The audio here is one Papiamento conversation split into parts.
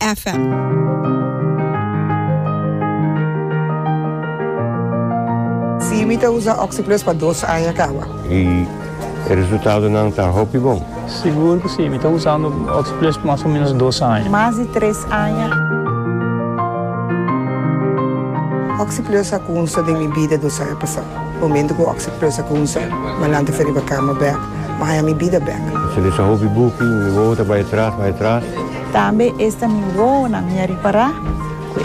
FM. Sí, mi ta usa Oxyplus pa dos aña kawa. I e resultadonan ta hopi bon. Sigur ku sí, mi ta usando Oxyplus pa mas o ménos dos aña. Mas di tres aña. Oxyplus a kunsa den mi bida dos aña pasá. Momentu ku Oxyplus a kunsa, mi a lanta fi riba kama bèk, mi a haña mi bida bèk. Sende sa hopi buki, mi wowo ta bai atras, bai atras. Tambe esta mi wowonan mi a ripará ku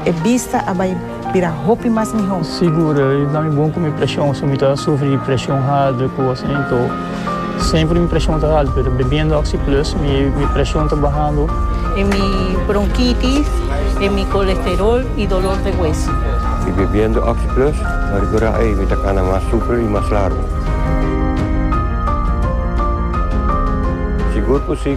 e bista a bai bira hopi mas mihó. Sigur, i ta mi bon ku mi preshon, si mi ta sufri di preshon haltu i kos así, enton semper mi preshon ta haltu, pero bebiendo Oxi Plus mi preshon ta bahando. E mi bronkitis, e mi kolesterol i dolor de hueso. I bebiendo Oxi Plus mi a rekurá, ei, mi ta kana mas super i mas largu. Sigur ku si.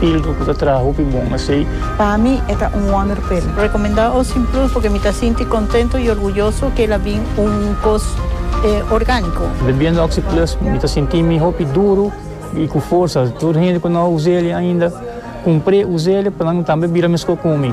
Ildo ku ta traha hopi bon asei. Pa mi e ta un wonderpil. Rekomendá Ocean Plus porque mi ta sinti kontento i orguyoso ke el a bin un kos orgániko. Bebiendo Oxi Plus mi ta sinti mi hopi duru i ku forsa. Tur hende ku no a us'e ainda, kumpr'e, us'e pa nan tambe bira meskó ku mi.